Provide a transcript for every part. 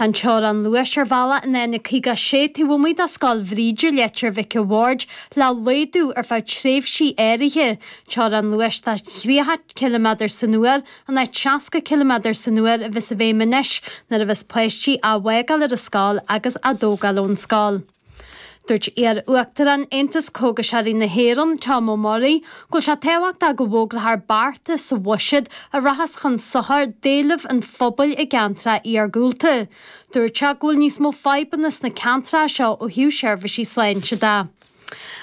An teorainn luais ar bhealach an N56 taobh amuigh de Scoil Bhríde, Leitir Mhic a' Bhaird, le laghdú ar feadh tréimhsí áirithe, teorainn luais de thríocha ciliméadar san uair in áit seasca ciliméadar san uair a bheas i bhfeidhm anois nuair a bheas páistí á bhfágáil ar an scoil agus á dtógáil ón scoil. Dúirt iar-Uachtarán Aontas Cógaiseoirí na hÉireann, Tom O'Murray, go bhfuil sé tábhachtach go bhfógraithear bearta sa bhuiséad a rachas chun sochar d'éilimh an phobail i gceantair iargúlta. Dúirt sé go bhfuil níos mó fadhbanna sna ceantair seo ó thaobh seirbhísí sláinte de.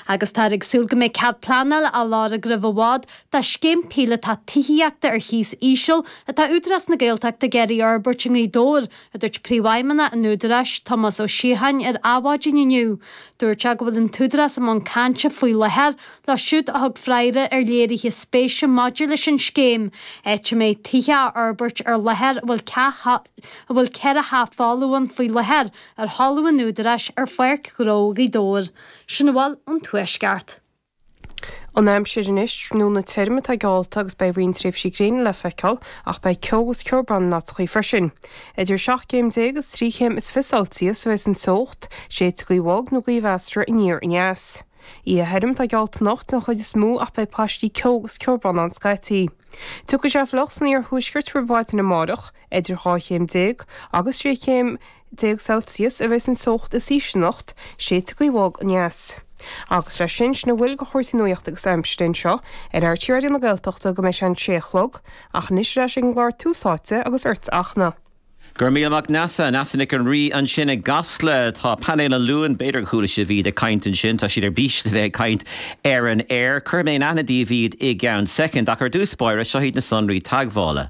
Agus táthar ag súil go mbeidh cead pleanáil á lorg roimh i bhfad dá scéim píolotach tithíochta ar chíos íseal atá Údarás na Gaeltachta ag iarraidh a fhorbairt i nGaoth Dobhair, a dúirt Príomhfheidhmeannach an Údaráis, Tomás Ó Síocháin, ar maidin inniu. Dúirt sé go bhfuil an tÚdarás i mbun cainte faoi láthair leo siúd a thug freagra ar léirithe spéise maidir leis an scéim áit a mbeidh tithe á bhforbairt ar láthair a bhfuil a bhfuil ceithre theach folamh ann faoi láthair ar thalamh an Údaráis ar Pháirc Ghnó Ghaoth Dobhair. Sin a bhfuil ón Tuaisceart. an aimsir anois, tráthnóna tirim atá geallta agus beidh roinnt tréimhsí gréine le feiceáil ach beidh ceo agus ceobhrán in áiteachaí freisin. Idir seacht gcéim déag agus trí chéim is fiche Celsius a bheas an teocht, séidfidh gaoth bhog nó gaoth mheasartha aniar aneas. Oíche thirim atá geallta anocht den chuid is mó ach beidh paistí ceo agus ceobhrán ann scaití. Tiocfaidh sé fliuch san iarthuaisceart roimh mhaidin amárach. Idir dhá chéim déag agus sé chéim déag Celsius a bheas an teocht is ísle anocht, séidfidh gaoth bhog aneas. Agus leis sin, sin a bhfuil de chúrsaí nuachta agus aimsire anseo ar RTÉ Raidió na Gaeltachta go mbeidh sé a sé a chlog, ach anois ar ais ag an gclár Tús Áite agus ort, a Fhachtna. Go raibh míle maith Neasa, Neasa Nic an Rí ansin i gCasla. Tá painéal an Luain, b'fhéidir gur chuala sibh iad ag caint ansin, tá siad ar bís le bheith ag caint ar an aer. Cuirfidh mé in aithne daoibh iad i gceann soicind, ach ar dtús báire, seo hiad na sonraí teagmhála.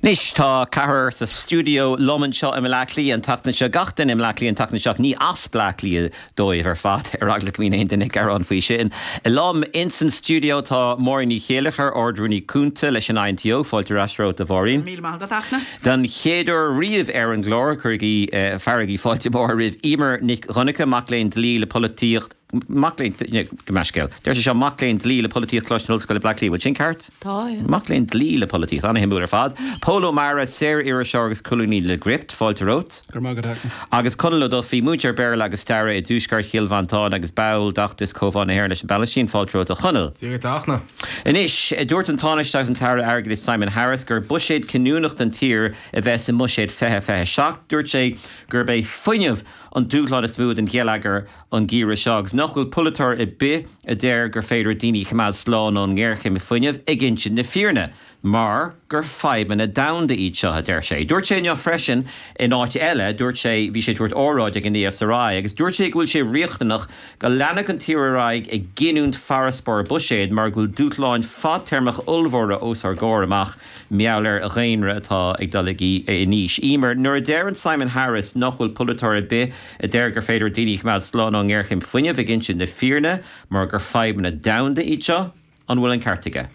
Anois tá ceathrar sa stiúideo liom anseo i mBleá Cliath an tseachtain seo, gach duine i mBleá Cliath an tseachtain seo, ach ní as Bleá Cliath dóibh ar fad, ar eagla go mbeadh aon duine ag gearán faoi sin. Liom ins an stiúideo tá Máirín Ní Chéilleachair, Ard-Rúnaí Cúnta leis an INTO, fáilte ar ais romhat a Mháirín. Míle maith agat, a Fhachtna. Don chéad uair riamh ar an gclár, cuirigí, fearaigí fáilte mhór roimh Emer Nic Dhonnacha, mac léinn Dlí le Polaitíocht, Mac léinn dlí, gabh mo leithscéal. Deir sé seo, Mac léinn dlí le polaitíocht Coláiste na hOllscoile Bleá Cliath. Bhfuil sin ceart? Tá, sea. Mac léinn dlí le polaitíocht. An-shuimiúil ar fad. Pól Ó Meadhra, saor-iriseoir agus colúnaí le Gript, fáilte romhat. Go raibh maith agat, a Fhachtna. Agus Conall Ó Dufaí, múinteoir Béarla agus Staire i dTuaisceart Chill Mhantáin agus ball d'fheachtas Comhdháil na hÉireann leis an bPalaistín, fáilte romhat a Chonaill. Dia duit, a Fhachtna. Anois, dúirt an Tánaiste agus an tAire Airgeadais Simon Harris gur buiséad cinniúnach don tír a bheas i mBuiséad 2027. Dúirt sé gurb é fuinneamh an dúshlán is mó don gheilleagar an geimhreadh seo agus nach bhfuil polaiteoir ar bith a deir gur féidir daoine a choimeád slán ón ngéarchéim fuinnimh ag insint na fírinne mar gur fadhbanna domhanda iad seo, a deir sé. Dúirt sé inniu freisin in áit eile, dúirt sé, bhí sé ag tabhairt óráid ag an ESRI agus dúirt sé go bhfuil sé riachtanach go leanfadh an tír ar aghaidh ag giniúint farasbarr buiséid mar go bhfuil dúshláin fadtéarmach ollmhóra os ár gcomhair amach mheall ar dhaonra atá ag dul in aois. Eimear, Nuair a deireann Simon Harris nach bhfuil polaiteoir ar bith a deir gur féidir daoine a choimeád slán ón ngéarchéim fuinnimh ag insint na fírinne mar gur fadhbanna domhanda iad seo, an bhfuil an ceart aige?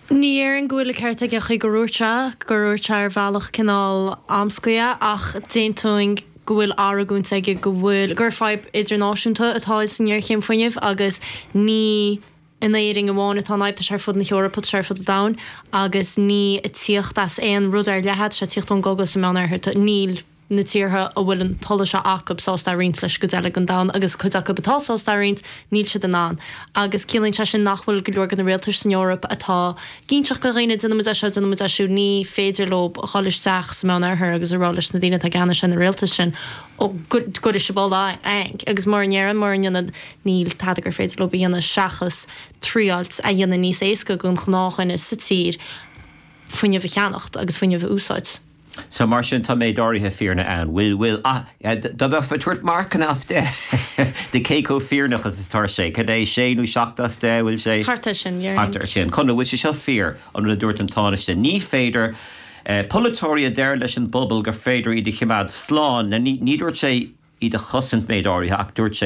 Ní dhéarfainn go bhfuil an ceart aige sílim gur dhúirt, gur dhúirt sé ar bhealach cineál amscaí é ach d'aontóinn go bhfuil argóint aige go bhfuil, gur fadhb idirnáisiúnta atá san ngéarchéim fuinnimh agus ní. in Éirinn amháin atá an fhadhb, tá sé ar fud na hEorpa, tá sé ar fud an domhain agus níl sé ag tíocht as aon rud ar leith, tá sé ag tíocht ón gcogadh sa Meán Oirthear, tá, níl na tíortha a bhfuil an t-ola seo acu sásta é a roinnt leis an gcuid eile den domhan agus cuid acu atá sásta é a roinnt, níl siad in ann. Agus ciallaíonn sé sin nach bhfuil go leor de na rialtais san Eoraip atá ag inseacht do dhaoine, déanfaidh muid é seo, déanfaidh muid é siúd, ní féidir leo dhul isteach sa Meán Oirthear agus a rá leis na daoine atá i gceannas ar na rialtais sin, Ó, an gcuirfidh sibh ola anall, agus mura ndéarann, mura ndéanann, níl tada gur féidir leob a dhéanamh seachas traíáilt a dhéanamh níos éasca don ghnáthdhuine sa tír fuinneamh a cheannacht agus fuinneamh a úsáid. So, mar sin, tá méid áirithe fírinne ann. Bhfuil, bhfuil, ah, dá mbeifeá ag tabhairt marcanna as deich dó cé chomh fírinneach is atá sé, cad é, sé nó seacht as deich, bhfuil sé? Thart ar sin, yeah. Thart ar sin. Conall, bhfuil sé seo fíor, an rud a dúirt an Tánaiste, ní féidir, Polaiteoirí a deir leis an bpobal gur féidir iad a chimeád slán, níor dhúirt sé iad a chosaint méid áirithe ach dúirt sé